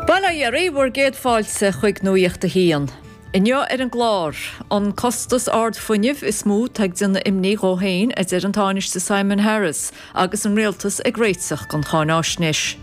Bail ó Dhia oraibh, bhur gcéad fáilte chuig Nuacht a hAon. Inniu ar an gclár, An costas ard fuinnimh is mó atá ag déanamh imní dhó féin a deir an Tánaiste Simon Harris agus an Rialtas ag réiteach don cháinaisnéis.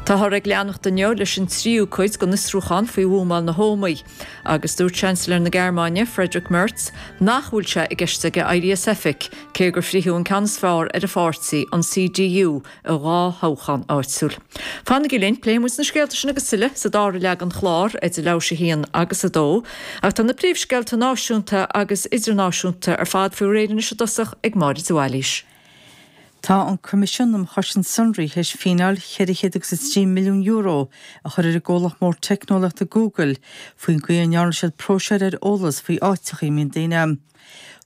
Táthar ag leanacht inniu leis an tríú cuid den fhiosrúchán faoi bhuamáil na hÓmaí agus dúirt Seansailéir na Gearmáine Friedrich Merz nach bhfuil sé i gceist aige éirí as oifig cé gur fritheadh an ceann is fearr ar a pháirtí, an CDU, i dhá thoghchán áitiúil. Fanaigí linn, pléifidh muid na scéalta sin agus tuilleadh sa dara leath den chlár, idir leathuair tar éis 1 agus 2. Ach tá na príomhscéalta náisiúnta agus idirnáisiúnta ar fad faoi réir anois i dtosach ag Máire de Bhailís. Tá an Coimisiún um Chosaint Sonraí tar éis fíneáil €403 milliún a chur ar an gcomhlacht mór teicneolaíochta Google faoin gcaoi a ndearna siad próiseáil ar eolas faoi áiteachaí a mbíonn daoine.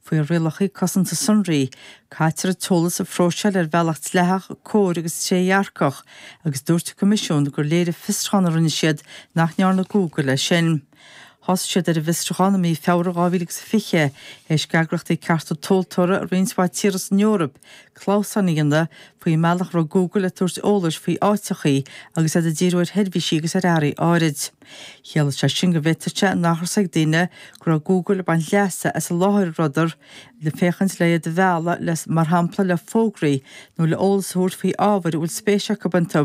Faoi rialacha cosanta sonraí, caitear an t-eolas a phróiseáil ar bhealach dleathach, cóir agus trédhearcach, agus dúirt an Coimisiún gur léirigh fiosrúchán a rinne siad nach ndearna Google é sin. Thosaigh siad ar an bhfiosrúchán i mí Feabhra 2020 tar éis d'eagraíochtaí cearta tomhaltóra i roinnt mhaith tíortha san Eoraip clamhsáin a dhéanamh faoin mbealach a raibh Google ag tabhairt eolais faoi áiteachaí agus iad ag díriú ar sheirbhísí agus ar earraí áirid. Chiallaigh sé sin go bhféadfadh sé nach raibh a fhios ag daoine go raibh Google ag baint leasa as an láthair a rabhadar le féachaint le hiad a mhealladh le, mar shampla, le fógraí nó le eolas a thabhairt faoi ábhair a bhfuil spéis acu iontu,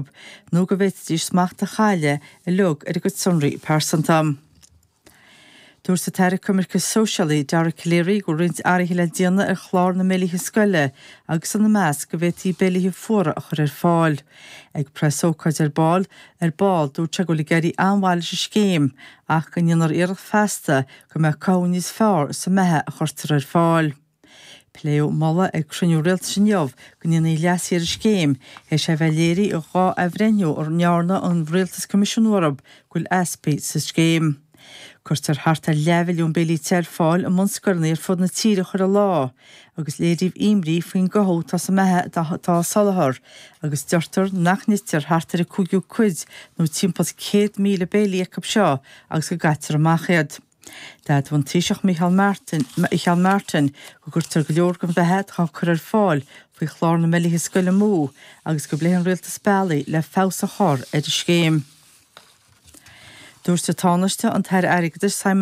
nó go bhféadfaidís smacht a chailleadh uilig ar a gcuid sonraí pearsanta. Dúirt an tAire Coimirce Sóisialaí, Dara Calleary, go raibh roinnt athruithe le déanamh ar chlár na mbéilithe scoile agus ina measc go bhféadfaí béilithe fuara a chur ar fáil. Ag preasócáid ar ball ar ball, dúirt sé go bhfuil ag éirí an-mhaith leis an scéim ach go ndéanfar iarracht feasta go mbeadh cothú níos fearr sa mbeatha a chuirtear ar fáil. Pléadh moladh ag cruinniú rialtais inniu go ndéanfaí leasú ar an scéim, tar éis é a bheith léirithe ag dhá athbhreithniú a ndearna an rialtas coimisiúnú orthu, go bhfuil easpaí sa scéim. Cuirtear thart ar leathmhilliún béilí te ar fáil i mbunscoileanna ar fud na tíre chuile lá, agus léiríodh imní faoin gcothú atá sa mbeatha atá á soláthar, agus deirtear nach n-itear thart ar an cúigiú cuid, nó timpeall céad míle béilí acu seo, agus go gcaitear amach iad. D'admhaigh an Taoiseach Micheál Martin, Micheál Martin go gcuirtear go leor den bheatha atá á cur ar fáil faoi Chlár na mBéilithe Scoile amú agus go bpléifidh an rialtas bealaí le feabhas a chur ar an scéim. Dúirt an Tánaiste, an tAire Airgeadais Simon